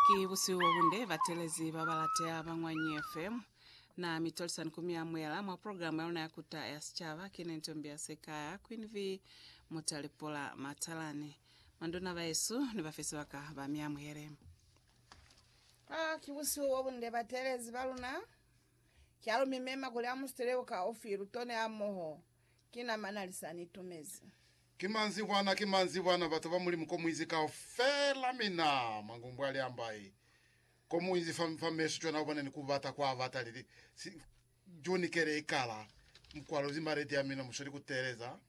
Ki busihu bobunde batelezi babalateha ba Ñwanyi FM. Na mi tolisani ku mi amuhela mwa programa ya luna ya Kuta ya Sicaba. Ki ne ntombi ya Sekaya, Queen Vee Mutalipola Matalani. Manduna bahesu ni bafe sibaka ba mi amuhele. Ah, ki busihu bobunde batelezi baluna. Ki alu mi mema kuli amu siteleho ka ofi, lutone hamoho Ki namana li sa ni tumezi. Ki manzibwana, ki manzibwana, batu ba Mulimu ko muinzi kaufela, mi na, Mangumbu ali ambai, ko muinzi fa, fa mesu cwana ubona ni kubata kwa bata li li, si, June kele ikala, Mukwalo zimba ledi ya mina musweli ku teeleza,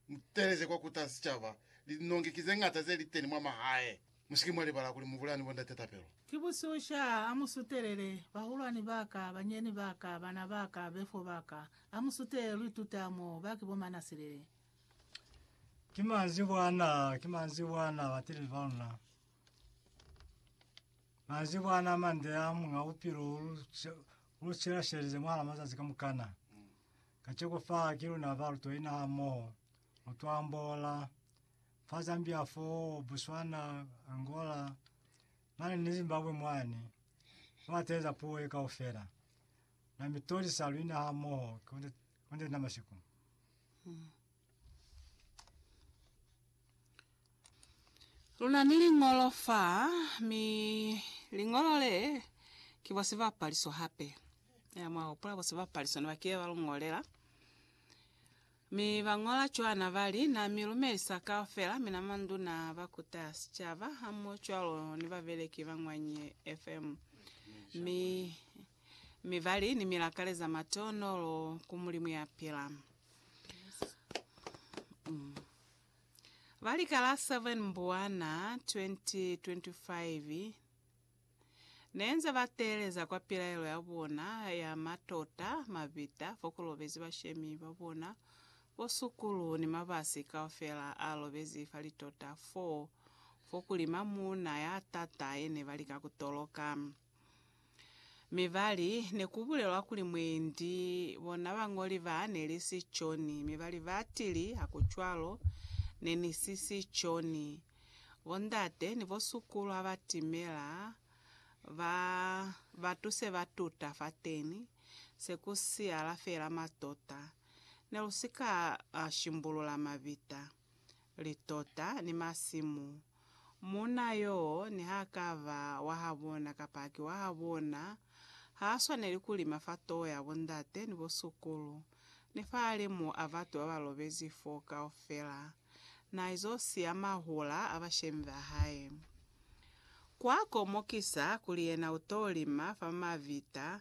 mu teeleze kwa kuta sicaba, linongi ki ze ngata ze li teni mwa mahae. Musike mwa libala kuli mubulaya ni bondate tapelo. Ki bususha, ha mu sutelele, bahulwani baka, banyeni baka, bana baka, befo baka, ha mu sutelele lu ituta mo, ba ki bo manasilele. Ki manzwi bwana, ki manzwi bwana, bateleli ba luna. Manzwi bwana a mande a Muñ'a Bupilo u lu, u lu shela-shelelize mwahala mazazi kamukana. Kaceko fa, ki luna ba lu toina hamoho, lu to ambola. fa Zambia foo, Botswana, Angola, mane ni Zimbabwe mwani. Fa ateza puo ye kaufela. Na mi tolisa luina ha moho konde konde na masiku. Luna ni lingolo fa mi lingolo le ki bo sibapaliso hape. Ya mwa hopola bo sibapaliso ne ba kile ba lungolela. Mi ba ñola cwana ba li, Na mi lumelisa kaufela, mina manduna, ba kuta sicaba, ha mmoho cwalo ni babeleki ba Ñwanyi FM. Mi, mi ba li, Ni mi lakaleza matonolo ku Mulimu ya pila. Mm. Ba li ka la 7 Mbuwana 2025, Nenze ba teeleza kwa pilaelo ya bona ya matota, mabita, fo ku lobezi bashemi ba bona, bo sukulu ni mabasi kaufela a lobezi fa litota foo, fo kuli mamuuna ya tata ye ne ba lika ku toloka. Mi ba li, Ne ku bulelwa kuli mwendi, bona bañoli ba, ne li si John. Mi ba li, Ba tili, Ha ku cwalo, ne ni si si John. Bondate ni bosukulu ha ba timela, ba ba tuse ba tuta fateni, se ku siyala fela matota. Ne lu si ka shimbulula mabita, litota, ni masimu. Muuna yoo, niha ka ba wa habona kapa ki wa habona, ha swaneli ku lima fa toho ya bondate ni bosukulu. ni fahalimu a batu ba ba lobezi fo kaufela, na izo siya mahula a bashemi ba hae. Kwa komokisa kuli yena u to lima fa mavita,